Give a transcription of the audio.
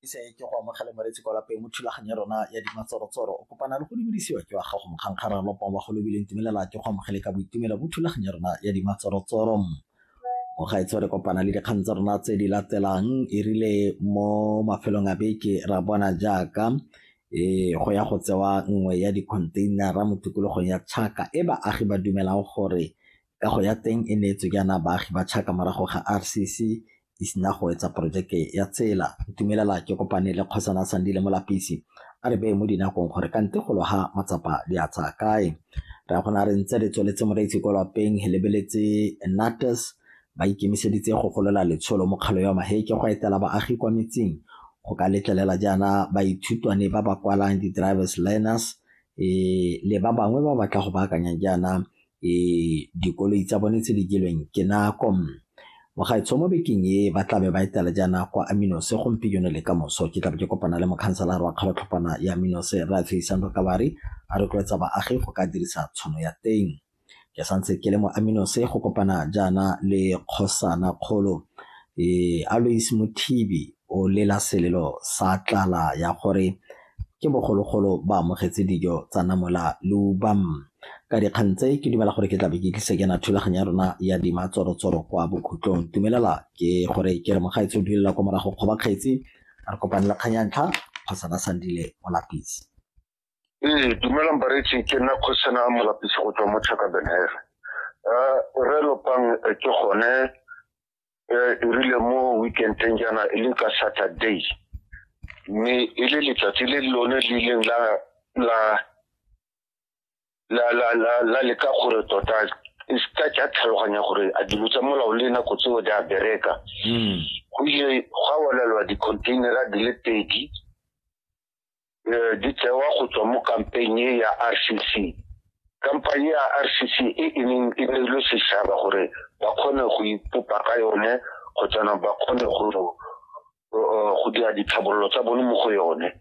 isa e ke go amogela moretsi kwa lapeng mo thulaganyo ya rona ya dimatsorotsoro o kopana le go dumedisiwa ke wa gago mokgankgara lopa wa go lebileng tumelela ke go amogele ka boitumelo mo thulaganyo ya rona ya dimatsorotsoro o ga itse re kopana le dikgang tsa rona tse di latelang e rile mo mafelong a beke ra bona jaaka e go ya go tsewa nngwe ya dikhontheinara mo tikologong ya tšhaka e baagi ba dumelang gore kago ya teng e neetswe jaana baagi ba Chaka morago ga RCC e sena go etsa porojeke ya tsela. Ntumelela ke kopane le Kgosana Sandile Molapisi a re beye mo dinakong gore ka nte go loga matsapa di a tsaya kae. Re a gona re ntse re tsweletse moreitse kwa lapeng re lebeletse Natus ba ikemiseditse go golola letsholo mo kgalo ya maheke go etela baagi kwa metseng go ka letlelela jaana baithutwane ba ba kwalang di-drivers learners e le ba bangwe ba batla go baakanya jaana dikoloi tsa bone tse di jelweng ke nako mogaetsho mo bekeng e ba tlabe ba etela jaana kwa aminos gompieno le ka moso ke tlabe ke kopana le mokhanselara wa kgalotlhopana ya aminos ra tsheisano kabari a rotloetsa baagi go ka dirisa tshono ya teng ke santse ke le mo aminos go kopana jaana le kgosana kgolo e alois mothibi o lela selelo sa tlala ya gore ke bogologolo ba amogetse dijo tsa namola leuba. Ka dikgang tse ke dumela gore ke tlabe ke tlise ke na thulaganyo ya rona ya dima tsorotsoro kwa bokhutlong tumelela ke gore ke re mogaetse o duelela kwa morago kgoba kgetsi re kopane le kgang ya ntlha kgotsa ba sandile molapisi ee dumelang baretsi ke nna kgosana molapisi go tswa mo chaka benhere um re lopang ke gone e rile mo weekendeng jaana e leng ka saturday mme e le letsatsi le lone le ileng la la la la la la leka gore tota e seka tsa tlhaloganya gore a dilo tsa molao le nako tseo di a bereka go ile gwa walelwa di-containera di le pedi eh, di tsewa go tswa mo kampanye ya rcc kampanye ya rcc e e neng e neilwe setšhaba gore ba kgone go ipopa ka yone kgotsana ba kgone go eh, go dira ditlhabololo tsa bone mo go yone